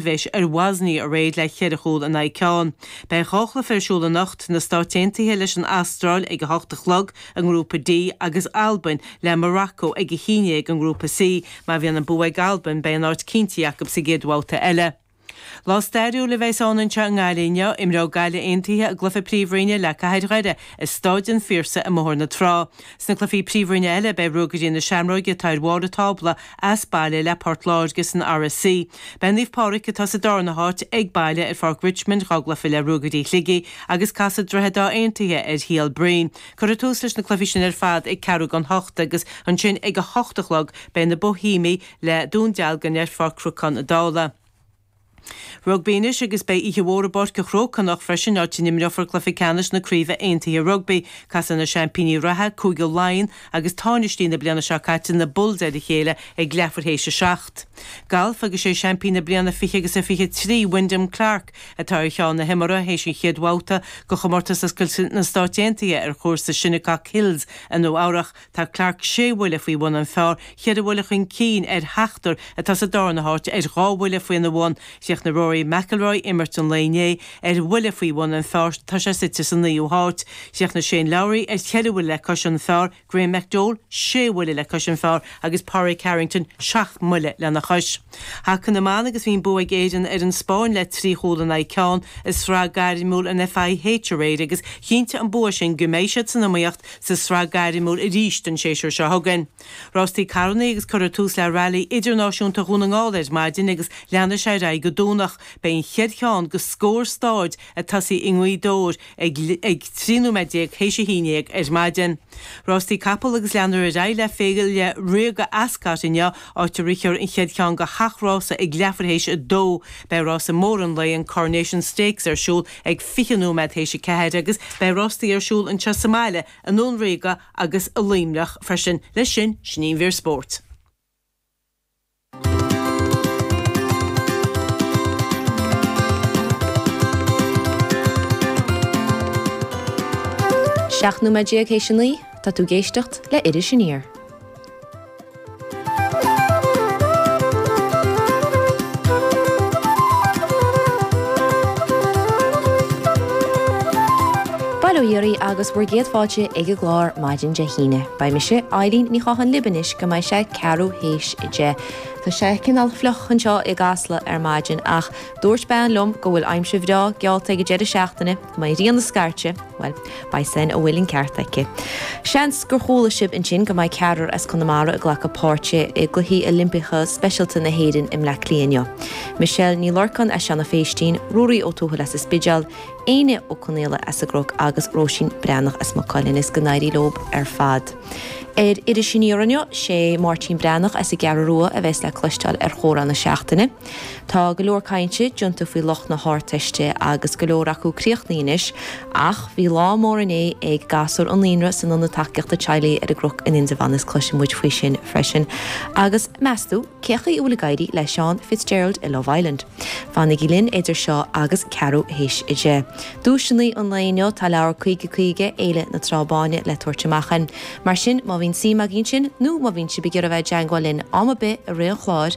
Bheadh ar Bhoisnia aréir le ceithre chúl in aghaidh ceann. Beidh dhá chluiche ar siúl anocht, na Stáit Aontaithe leis an Astráil ag a hocht a chlog i nGrúpa D agus Albain le Morocco ag a haon déag i nGrúpa C. Má bhíonn an bua ag Albain, beidh an áit cinnte acu sa gcéad bhabhta eile. Lá stairiúil a bheas ann anseo i nGaillimh inniu. Imreoidh Gaillimh Aontaithe a gcluiche Príomhroinne le Cathair Dhoire i Stáid an Phiarsaigh i mBóthar na Trá. Sna cluichí príomhroinne eile, beidh Ruagairí na Seamróige, atá ar bharr an tábla as baile le Port Láirge san RSC. Beidh Naomh Pádraig, atá sa darna háit, ag baile ar Pháirc Richmond, dhá gcluiche le Ruagairí Shligigh agus casfaidh Droichead Átha Aontaithe ar Shíol Bhroin. Cuirfear tús leis na cluichí sin ar fad ag ceathrú don hocht agus ansin ag a hocht a chlog beidh na Boihéamaigh le Dún Dealgan ar Pháirc Chnocán Uí Dhálaigh. Rugbaí anois agus beidh oíche mhór i bPáirc an Chrócaigh anocht freisin, áit a n-imreofar cluiche ceannais na Craoibhe Aontaithe Rugbaí. Casfaidh na seaimpíní reatha, Cúige Laighean, agus táinistí na bliana seo caite, na Bulls, ar a chéile ag leathuair théis 7. Galf agus sé seaimpín na bliana 20 agus 23, Wyndham Clark, atá ar cheann na himeartha théis an chéad bhabhta de Chomórtas Oscailte na Stáit Aontaithe ar chúrsa Shinnecock Hills i Nua-Eabhrac. Tá Clark sé bhuille faoi bhun an phár, ceithre bhuille chun cinn ar sheachtar atá sa darna háit ar dhá bhuille faoina bhun. Chríochnaigh Rory McIlroy imirt an lae inné ar bhuille faoi bhun an pháir, tá sé suite sa naoú háit. Chríochnaigh Shane Lowry ar cheithre bhuille le cois an pháir, Graeme McDowell sé bhuille le cois an pháir agus Pádraig Harrington seacht mbuille lena chois. Haca na mban agus bhí an bua ag Éirinn ar an Spáinn le trí chúl in aghaidh ceann i sraith gairmiúil an FIH aréir agus chinntigh an bua sin go mbeidh siad san iomaíocht Sa tsraith gairmiúil arís don séasúr seo chugainn. Rástaí carranna agus cuireadh tús le Railí Idirnáisiúnta Dhún na nGall ar maidin agus leanfaidh sé ar aghaidh go Domhnach. Beidh an chéad cheann de scór stáid ag tosaí i nGaoth Dobhair ag 13 nóiméad théis a haon dhéag ar maidin. Rástaí capall agus leanfar ar aghaidh le Féile Ríoga Ascot inniu áit a rithfear an chéad cheann de sheacht rása ag leathuair théis a dó. Beidh rása mór an lae, an Coronation Stakes ar siúl ag 20 nóiméad théis a ceathair agus beidh rástaí ar siúl anseo sa mbaile, i nDún Ríoga agus i Luimneach freisin. Leis sin, sin í an mhír spóirt. Seacht nóiméad déag théis a naoi, tá tú ag éisteacht le Iris Aniar. Bail ó Dhia oraibh agus bhur gcéad fáilte ag an gclár maidin Dé hAoine. Beidh mise, Eibhlín Ní Chatháin libh anois go mbeidh sé ceathrú théis a deich. Tá sé cineál fliuch anseo i gCasla ar maidin ach dúirt bean liom go bhfuil aimsir bhreá geallta ag an deireadh seachtaine. Go mbeidh an ghrian ag scairteadh, bhuel, beidh, má bhfuil an ceart aici. Seans gur chuala sibh ansin go mbeidh ceathrar as Conamara ag glacadh páirt i gCluichí Oilimpeacha Speisialta na hÉireann i mBleá Cliath inniu. Michelle Ní Lorcáin as Seanadh Phéistín, Ruairí Ó Tuathail as an Spidéal, Éinne Ó Conaola as an gCnoc agus Róisín Breathnach as Maigh Cuilinn. Is go n-éirí leob ar fad. Ar Iris Aniar inniu, sé Máirtín Breathnach as an gCeathrú Rua a bheas le cloisteáil ar chomhrá na seachtaine. Tá go leor cainte déanta faoi lucht na hArdteiste agus go leor acu críochnaithe anois, ach bhí lá mór inné ag gasúir an naíonra san Ionad Tacaíochta Teaghlaigh ar an gCroc in Indreabhán is cloisfidh muid faoi sin freisin. Agus meastú cén chaoi a bhfuil ag éirí le Seán Fitzgerald i Love Island? Fanaigí linn idir seo agus ceathrú théis a deich. Duaiseanna an lae inniu, tá leabhar 50 50, Fhéile na Trá Báine, le tabhairt amach ann. Mar sin, má bhíonn suim agaibh ansin, nó má bhíonn sibh ag iarraidh a bheith i dteagmháil linn am ar bith i rith an chláir,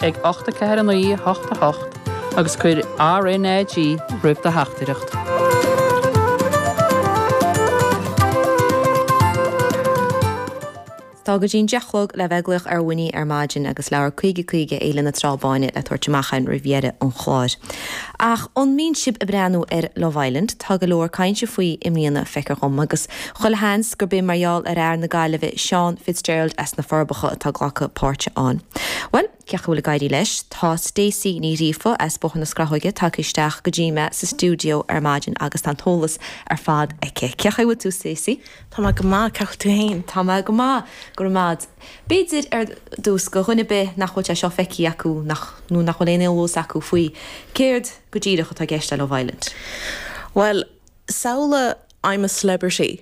ag 84 9 8 8 agus cuir RNAG roimh do theachtaireacht. Tá go dtí an deich-chlog le bheith ag glaoch orainn ar maidin agus leabhar 50 50 Fhéile na Trá Báine le tabhairt amach ann roimh dheireadh an chláir. Ach an mbíonn sibh ag breathnú ar Love Island, tá go leor cainte faoi i mbliana, feictear dhom, agus Chuile sheans gurb é mar gheall ar fhear na Gaillimhe Seán Fitzgerald as na Forbacha atá ag glacadh páirt ann. Bhuel, cén chaoi a bhfuil ag éirí leis? Tá Stacey Ní Ghríofa as Bóthar na Scrathóige tagtha isteach go dtí mé sa stiúideo ar maidin agus tá an t-eolas ar fad aici. Cén chaoi a bhfuil tú, Stacey? Tá mé go maith, cén chaoi a bhfuil tú fhéin? Tá mé go maith, go raibh maith a'd. B'fhéidir, ar dtús, do dhuine ar bith nach bhfuil sé seo feicthe acu nach, nó nach bhfuil aon eolas acu faoi, céard go díreach atá i gceist le Love Island? Bhuel, samhlaigh, I'm a celebrity.